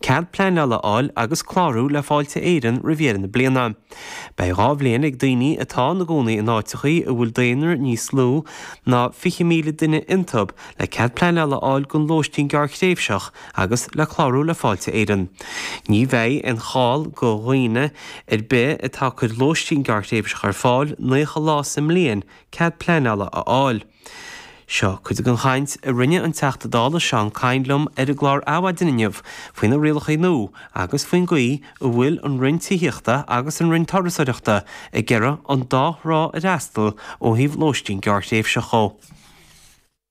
Cead pleanála a fháil agus clárú le Fáilte Éireann roimh dheireadh na bliana. Beidh dhá bhliain ag daoine atá ina gcónaí in áiteachaí a bhfuil daonra níos lú ná 20,000 duine iontub le cead pleanála a fháil don lóistín gearrthréimhseach agus le clárú le Fáilte Éireann. Ní bheidh aon chall go dhaoine ar bith atá ag cuir lóistín gearrthréimhseach ar fáil 90 lá sa mbliain cead pleanála a fháil. Seo cuid den chaint a rinne an Teachta Dála Seán Kyne liom ar an gclár Adhmhaidin inniu faoi na rialachaí nua agus faoin gcaoi a bhfuil an Roinn Tithíochta agus an Roinn Turasóireachta ag iarraidh an dá thrá a fhreastal ó thaobh lóistín gearrthréimhseach dhó.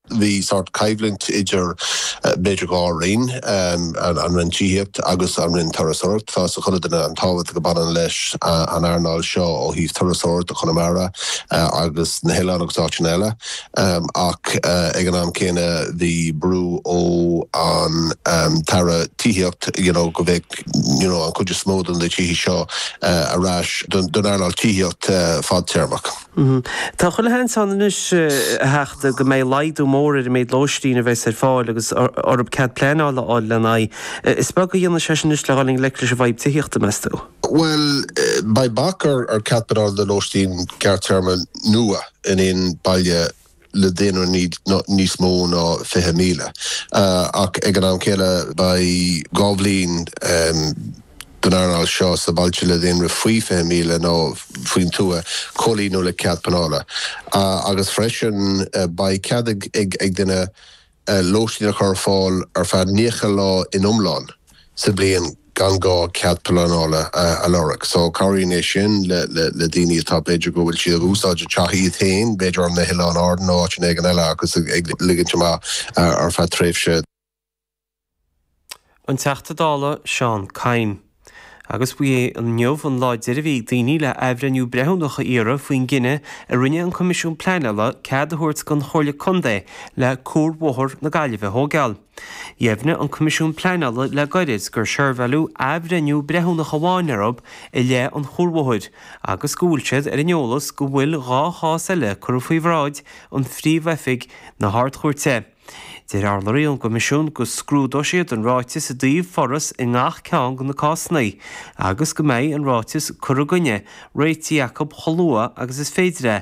Bhí sórt coimhlint idir b'fhéidir dhá roinn, an Roinn Tithíochta agus an Roinn Turasóireachta. Tá 'fhios ag chuile duine an tábhacht a baineann leis an earnáil seo ó thaobh turasóireachta Chonamara. agus na hoileáin agus áiteanna eile ach ag an am céanna bhí brú ó an tAire Tithíocht you know go bheadh you know an chuid is mó de na tithe seo ar ais don don earnáil tithíocht fadtéarmach. Tá chuile sheans ann anois a Theachta go mbeidh laghdú mór ar an méid lóistín a bheas ar fáil agus orthu cead pleanála a fháil lena aghaidh. Is beag a dhéanfaidh sé sin anois le dhul i ngleic leis an bhfadhb tithíochta meas tú? Bhuel, beidh bac ar cead pleanála do lóistín gearrtéarma nua in aon baile le daonra níos mó ná 20,000, ach ag an am céanna beidh dhá bhliain don earnáil seo sna bailte le daonra faoi 20,000 nó faoin tuath comhlíonadh le cead pleanála agus freisin beidh cead ag duine lóistín a chur ar fáil ar feadh 90 lá in iomlán sa bhliain gan gá cead pleanála a lorg. So cabhraíonn é sin le daoine atá, b'fhéidir go bhfuil siad ag úsáid a teach iad féin, b'fhéidir ar na hOileáin Árann nó áiteanna éigin eile agus ag ligint amach ar feadh tréimhse. An Teachta Dála Seán Kyne. Agus ba é inniu an lá deiridh a bhí ag daoine le athbhreithniú breithiúnach a iarraidh faoin gcinneadh a rinne an Coimisiún Pleanála cead a thabhairt don Chomhairle Contae le cuarbhóthar na Gaillimhe a thóigeáil. Dheimhnigh an Coimisiún Pleanála le gairid gur seirbheáileadh athbhreithniú breithiúnach amháin orthu i leith an chuarbhóthair agus go bhfuil siad ar an eolas go bhfuil dhá chás eile curtha faoi bhráid an Phríomh-Oifig na hArd-Chúirte. Deir urlabhraí ón gCoimisiún go scrúdóidh siad an ráiteas i dtaobh foras i ngach ceann de na cásanna agus go mbeidh an ráiteas cur i gcoinne réitithe acu chomh luath agus is féidir é,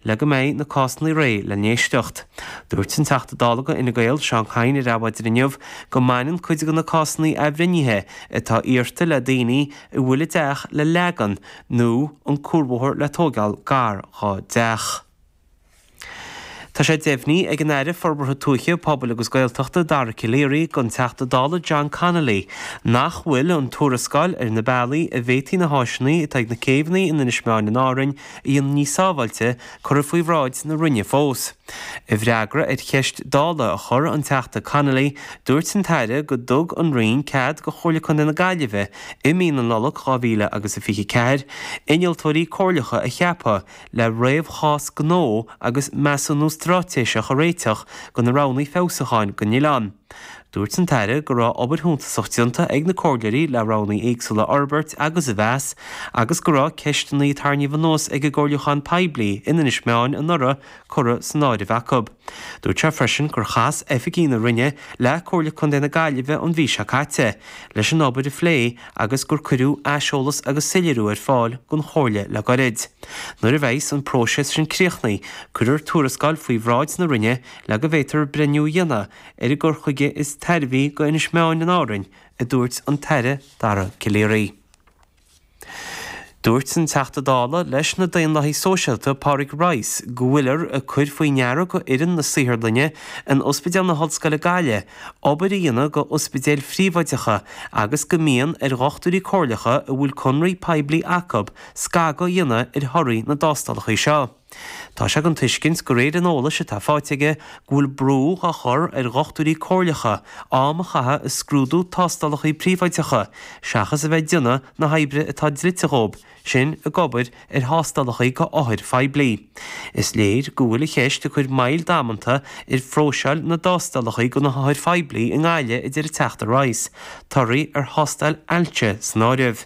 le go mbeidh na cásanna réidh le n-éisteacht. Dúirt an Teachta Dála do Fhine Gael, Seán Kyne ar Adhmhaidin inniu go mbaineann cuid de na cásanna athbhreithnithe atá iarrta le daoine a bhfuil a dteach le leagan nó an cuarbhóthar le tóigeáil gar dá dteach. Tá sé deimhnithe ag an Aire Forbartha Tuaithe, Pobail agus Gaeltachta, Dara Calleary, don Teachta Dála John Connolly nach bhfuil an tuarascáil ar na bealaí a bhféadfaí na háiseanna atá ag na céibheanna in Inis Meáin in Árainn a dhéanamh níos sábháilte curtha faoi bhráid na Roinne fós. I bhfreagra ar cheist Dála a chur an Teachta Connolly, dúirt an tAire go dtug an Roinn cead do Chomhairle Contae na Gaillimhe i mí na Nollag 2024 innealtóirí comhairleacha a cheapadh le réamhchás gnó agus measúnú straitéiseach a réiteach go na roghnaí feabhsúcháin go na céibheanna. Dúirt an tAire go raibh obair shuntasach déanta ag na comhairleoirí le roghnaí éagsúla a fhorbairt agus a mheas agus go raibh ceisteanna a tarraingíodh anuas ag an gcomhairliúchán poiblí in Inis Meáin anuraidh curtha san áireamh acu. Dúirt sé freisin gur chas oifigigh na Roinne le Comhairle Contae na Gaillimhe an mhí seo caite leis an obair a phlé agus gur cuireadh aiseolas agus soiléiriú ar fáil gon Chomhairle le goirid. Nuair a bheas an próiseas sin críochnaithe, cuirfear tuarascáil faoi bhráid na Roinne le go bhféadfar breithniú a dhéanamh ar an gcur chuige is tairbhí go Inis Meáin in Árainn, a dúirt an tAire Dara Calleary. Dúirt an Teachta Dála leis na Daonlathaigh Sóisialta Pádraig Rice go bhfuilear ag cur faoi deara go fhoireann na saotharlainne in Ospidéal na hOllscoile, Gaillimh obair a dhéanamh go ospidéil phríobháideacha agus go mbíonn ar dhochtúirí comhairleacha a bhfuil conraí poiblí acu scagadh a dhéanamh ar thorthaí na dtástálacha seo. Tá sé den tuiscint, de réir an eolais atá faighte aige, go bhfuil brú á chur ar dhochtúirí comhairleacha am a chaitheamh ag scrúdú tástálacha príobháideacha seachas a bheith ag déanamh na hoibre atá dlite dhóibh, sin ag obair ar thástálacha go othair phoiblí. Is léir go bhfuil an cheist ag cur moill damanta ar phróiseáil na dtástálacha go na hothair phoiblí i nGaillimh a deir an Teachta Rice, torthaí ar thástáil ailse san áireamh.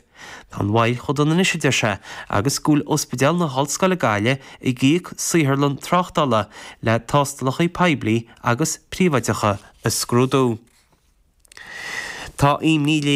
Tá an bhail chomh dona anois, a deir sé, agus go bhfuil Ospidéal na hOllscoile, Gaillimh ag íoc saotharlann tráchtála le tástálacha poiblí agus príobháideacha a scrúdú. Tá imní léirithe.